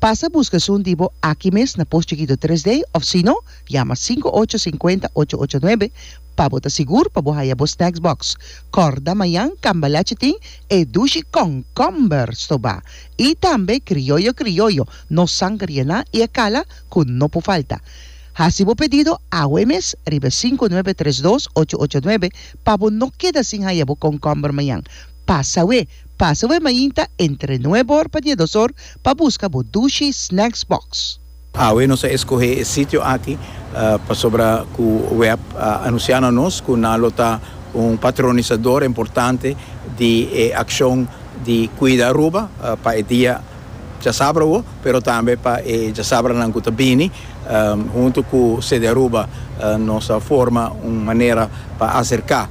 Pasa buska esun di bo aki mes na Post Chikito Tres D of sino yama sinku ocho sinkuenta ocho ocho nuebe pa bo ta sigur pa bo haya bo snacks box. Kòrda mañan Cambalache tin e dushi kònkòmber stobá i tambe krioyo krioyo, no sanger yená i e kala ku no por falta. Hasi bo pedido awe mes riba e sinku nuebe tres dos ocho ocho nuebe pa bo no keda sin haya bo kònkòmber mañan. Pasa we. Pasa bo e mainta entre nuebe or pa diedos or pa busca bo Dushi Snacks Box. Awe nos a escoge e sitio aki pasobra cu Webb a anuncia na nos cu nan lo ta un patronisador importante di e accion di cuida Aruba pa e dia. djasabra wou, pero tambe pa e djasabranan ku ta bini. Huntu ku CDAruba nos a forma un manera pa aserká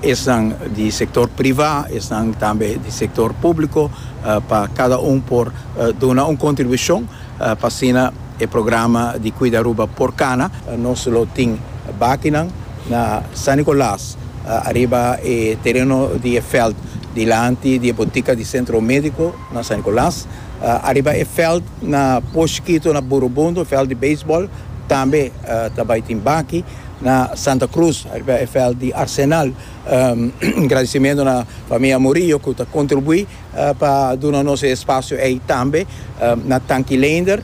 esnan di sektor privá, esnan tambe di sektor públiko pa kada un por duna un kontribushon pa asina e programa di Kuida Aruba por kana. Nos lo tin bakinan na San Nikolaas ariba e tereno di e veld dilanti di e botika di Sentro Médiko. Na San Nicolas, ariba e veld na Poshkito na Burubundo, veld di beisbol, tambe ta bai tin baki. Na Santa Cruz, ariba e veld di Arsenal, un gradisimentu na famia Murillo ku ta kontribuí pa duna nos e espasio ei tambe. Na Tanki Leender.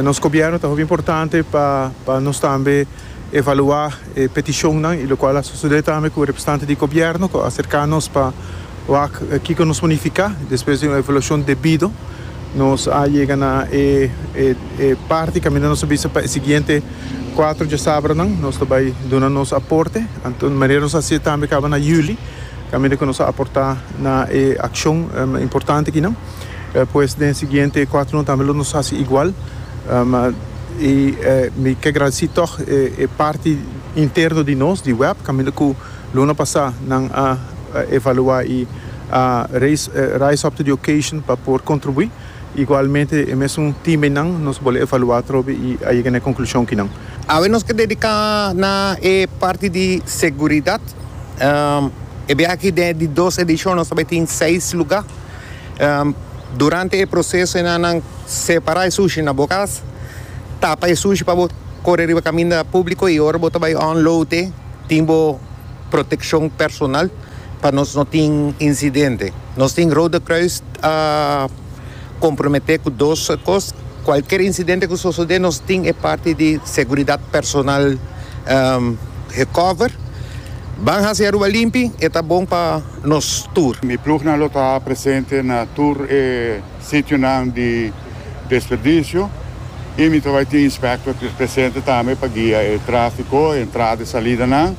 Nos gobièrnu ta hopi importante pa nos tambe evaluá. e petishonnan y locual a sucede tambe cu representante di gobierno cu a acerca nos pa wak kico nos por nifica. Despues di un evaluacion debido nos a yega na e e parti caminda nos a bisa pa e siguiente cuatro djasabranan nos ta bay duna nos aporte. Anto di manera nos a haci tambe caba na juli caminda cu nos a aporta na e accion importante akinan pues den siguiente cuatronan tambe lo nos haci igual. I mi ke gradesí tòg e parti interno di nos di wèb kaminda ku luna pasá nan a evaluá i a raise rise up to the occasion pa por kontribuí. Igualmente e mesun timenan nos bole evaluá atrobe i a yega na e konklushon kinan. Awe nos ke dediká na e parti di seguridat. E biaha aki den di dos edishon nos ta bai tin seis lugá. Durante e proseso e nannan separa e sushi na bo kas, tapa e sushi pa bo kore riba kaminda públiko i ora bo ta bai unload e tin bo protekshon personal pa nos no tin insidente. Nos tin Rode Kruis a komprometé ku dos kos, kualker insidente ku sosodé nos tin e parti di seguridat personal gecoverd. Ban hasi Aruba limpi, e ta bon pa. nos tur. Mi plugnan lo ta presente na tur e sitionan di desperdicio y mi ta bay tin inspector presente tambe pa guia e trafico, e entrada y salidanan.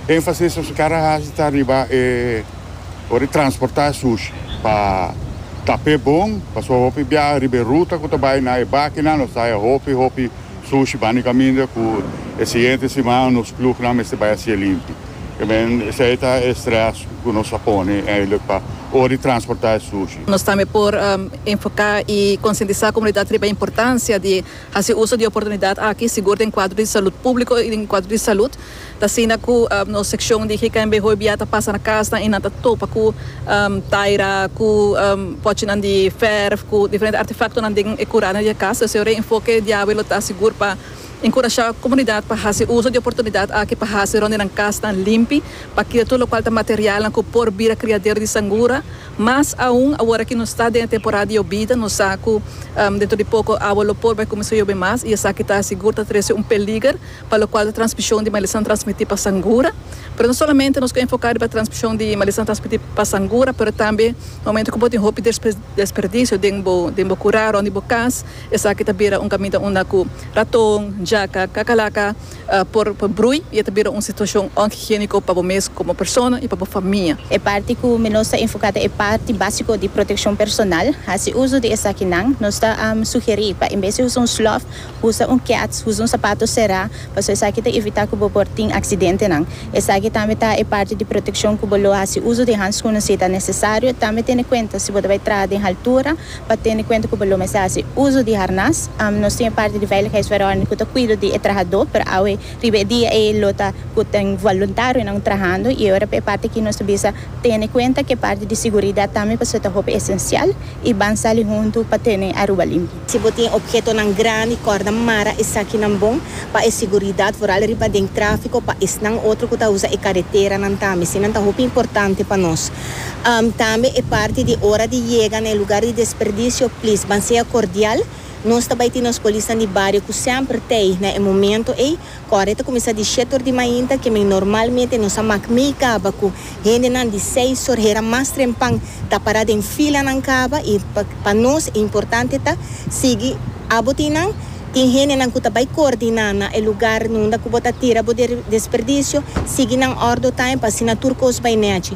Enfasis nos cara haci ta riba e ora di transporta e sushi pa tap'e bon, pasobra hopi biaha riba e ruta cu ta bay na e bakinan nos ta bay hopi hopi. Sushi Bani Caminda cu e siguiente siman nos plugnan mester bay a cia limpi. Esey esey ta e stress cu nos a pone eindelijk pa ora di transporta e sushi. Nos tambe por enfoca y concientisa comunidad riba e importancia di haci uso di oportunidad aki, sigur den cuadro di salud publico y den cuadro di salud. Ta asina ku nos sekshon di GKNB hoy bia ta pasa na kasnan i nan ta topa ku taira, ku pòchinan di fèrf, ku diferente artefaktonan den e kuranan di e kas. Esei e reenfoke diawe lo ta sigur pa enkurashá komunidat pa hasi uso di e oportunidat aki pa hasi rònt di nan kasnan limpi pa kita tur lokual ta materialnan ku por bira kriadero di sangura. Mas aun awor ki nos ta den e temporada di yobida, nos sa ku dentro di poko awa lo por bai kuminsá yobe mas i esaki ta sigur ta trese un peliger. pa lokual ta transmishon di malesa ta transmití pa sangura, pero no solamente nos ku enfoká riba transmishon di malesa ta transmití pa sangura, pero tambe momentu ku bo tin hopi desperdisio den bo den bo kurá rònt di bo kas, esaki ta bira un kaminda unda ku raton, jaka, kakalaka por por brui i e ta bira un situashon onhigiéniko pa bo mes komo persona i pa bo famia. E parti ku mi nos ta enfoká ta e parti básiko di protekshon personal. Hasi uso di esakinan, nos ta sugerí pa en bes di usa un slòf, Usa un kets, usa un sapato será, pasobra esaki ta evitá ku bo por tin aksidentenan. Esaki tambe ta e parti di protekshon ku bo lo hasi uso di hanskùnan si ta nesesario. Tambe tene kuenta si bo ta bai traha den haltura, pa tene kuenta ku bo lo mester hasi uso di harnas. Nos tin e parti di veiligheidsverordening ku ta kuido di e trahadó, pero awe riba e dia ei lo ta ku tin voluntarionan trahando. I ora pa e parti aki nos ta bisa tene kuenta ku e parti di siguridat tambe pasobra ta hopi esensial i ban sali huntu pa tene Aruba limpi. Si bo tin ophetonan grandi, kòrda mara esakinan bon pa e siguridad, vooral riba den tráfiko pa esnan otro ku ta usa e kareteranan tambe. Sinan ta hopi importante pa nos. Tambe e parti di ora di yega na e lugar di desperdisio, please ban sea kordial. Nos ta bai tin nos polisnan di bario ku semper tei na e momento ei Kòrda e ta kuminsá di shèt or di mainta, ke men normalmente nos a mak mei kaba ku hendenan di seis or hera mas trempan ta pará den filanan kaba i pa nos e importante ta sigui abo tin nan. Tin hendenan ku ta bai koordiná na e lugar unda ku bo ta tira bo desperdisio, sigui nan òrdo taim pa asina tur kos bai nèchi.